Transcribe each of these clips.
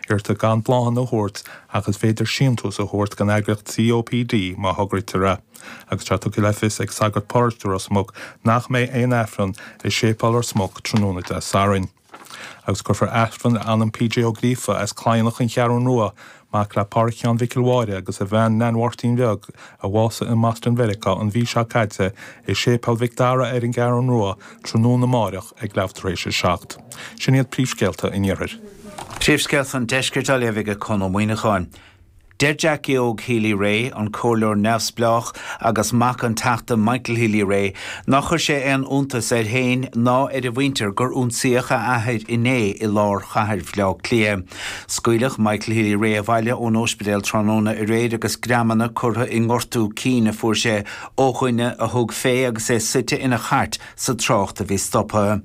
Iarrtar gan bláthanna a thabhairt ach is féidir síntús a thabhairt don eagraíocht COPD má thograítear é. Agus tá tugtha le fios ag sagart paróiste Ros Muc nach mbeidh aon Aifreann i séipéal Ros Muc tráthnóna Dé Sathairn. Agus cuirfear Aifreann PJ Ó Gríofa as Cladhnach an Cheathrú Rua, mac le Pádhraic Sheáin Mhicil Mháire agus a bhean Neain Mháirtín Bheag a bhásaigh i mBoston Mheiriceá, an mhí seo caite i Séipéal Mhic Dara ar an gCeathrú Rua Tráthnóna amáireach ag leathuair tar éis a seacht. Sin iad príomhscéalta an Iarthair. Príomhscéalta an Deiscirt á léamh ag Conn Ó Muíneacháin. Deir Jackie Óg Healy-Rae, an comhairleoir neamhspleách agus mac an Teachta Michael Healy-Rae, nár chuir sé aon iontas air féin ná ar a mhuintir gur ionsaíodh a athair inné i lár chathair Bhaile Átha Cliath. Scaoileadh Michael Healy-Rae abhaile ón óispidéal tráthnóna aréir agus greamanna curtha i ngortú cinn a fuair sé Ó dhuine a thug fé agus é suite ina chairt sa trácht a bhí stoptha.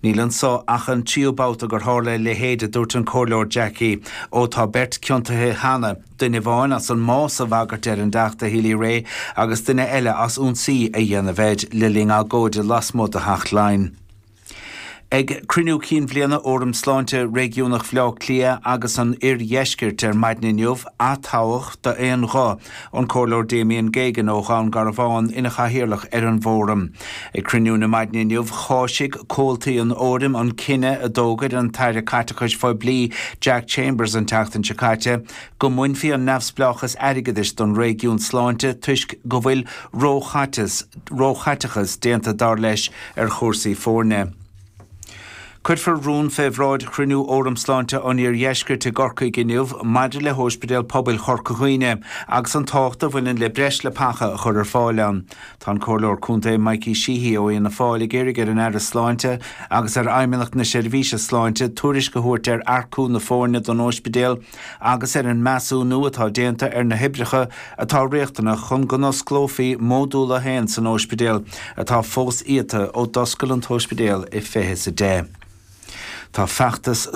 Níl anso ach an tríú babhta gur tharla a leithéid, a dúirt an Comhairleoir Jackie Óg. Tá beirt ciontaithe cheana, duine amháin as an mbás a bhagairt ar an dTeachta Healy-Rae agus duine eile as ionsaí a dhéanamh air le linn agóide lasmuigh de Theach Laighean. Ag cruinniú cinn bhliana Fhóram Sláinte Réigiúnach Bhaile Átha Cliath agus an Oirdheiscirt ar maidin inniu aththoghadh d'aon ghuth an Comhairleoir Damien Geoghegan ó Dhún Garbhán ina Chathaoirleach ar an bhFóram. Ag cruinniú na maidine inniu cháisigh comhaltaí an Fhóraim an cinneadh a d'fhógair an tAire Caiteachais Phoiblí Jack Chambers an tseachtain seo caite go mbainfí an neamhspleáchas airgeadais den réigiún sláinte toisc go bhfuil ró-chaiteachas déanta dar leis ar chúrsaí foirne. Cuirfear rún fé bhráid Chruinniú Fhóram Sláinte an Iardheiscirt i gCorcaigh inniu maidir le hÓispidéal Pobail Chorca Dhuibhne agus an tábhacht a bhaineann le breis leapacha a chur ar fáil ann. Tá an Comhairleoir Contae Mikey Sheehy ó Fhianna Fáil ag iarraidh ar an Aire Sláinte agus ar Fheidhmeannacht na Seirbhíse Sláinte tuairisc a thabhairt ar earcú na foirne don óispidéal agus ar an measúnú atá déanta ar na hoibreacha atá riachtanach chun go n-osclófaí Módúl a hAon san óispidéal atá fós iata ó d'oscail an t-óispidéal i fiche is a deich. Tá feachtas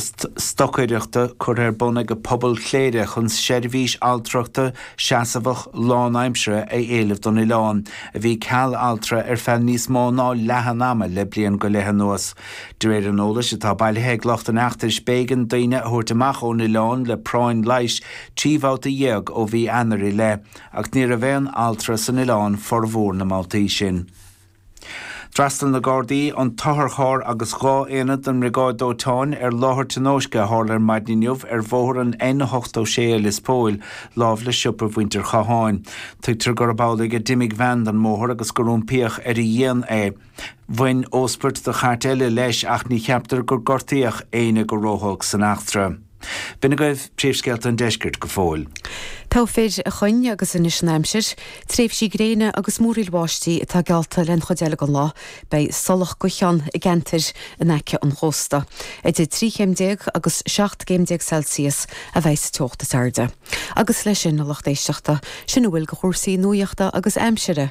stocaireachta curtha ar bun ag pobal Chléire chun seirbhís altrachta seasamhach lánaimseartha a éileamh don oileán, a bhí ceal altra ar feadh níos mó ná leath an ama le bliain go leith anuas. De réir an eolais atá bailithe ag lucht an fheachtais b'éigean daoine a thabhairt amach ón oileán le práinn leighis trí bhabhta dhéag ó mhí Eanáir i leith ach ní raibh aon altra san oileán formhór na mbabhtaí sin. D'fhreastail na Gardaí, an t-otharcharr agus dhá aonad den mbriogáid dóiteáin ar láthair tionóisce a tharla ar maidin inniu ar bhóthar an N86 i Lios Póil láimh le siopa mhuintir Chatháin. Tuigtear gurb amhlaidh a d'imigh veain den mbóthar agus gur iompaíodh ar a dhíon é. Bhain óspairt do chairt eile leis ach ní cheaptar gur gortaíodh éinne go ródhona san eachtra. B'in agaibh príomhscéalta an deiscirt go fóill. Pádraig Ó Coinn agus anois an aimsir, tréimhsí gréine agus múraíl bháistí atá geallta don chuid eile den lá. Beidh siollach gaoithe ann i gceantair in aice an chósta. Idir trí chéim déag agus seacht gcéim déag Celsius a bheidh sa teocht is airde. Agus leis sin, a lucht éisteachta, sin a bhfuil de chúrsaí nuaíochta agus aimsire!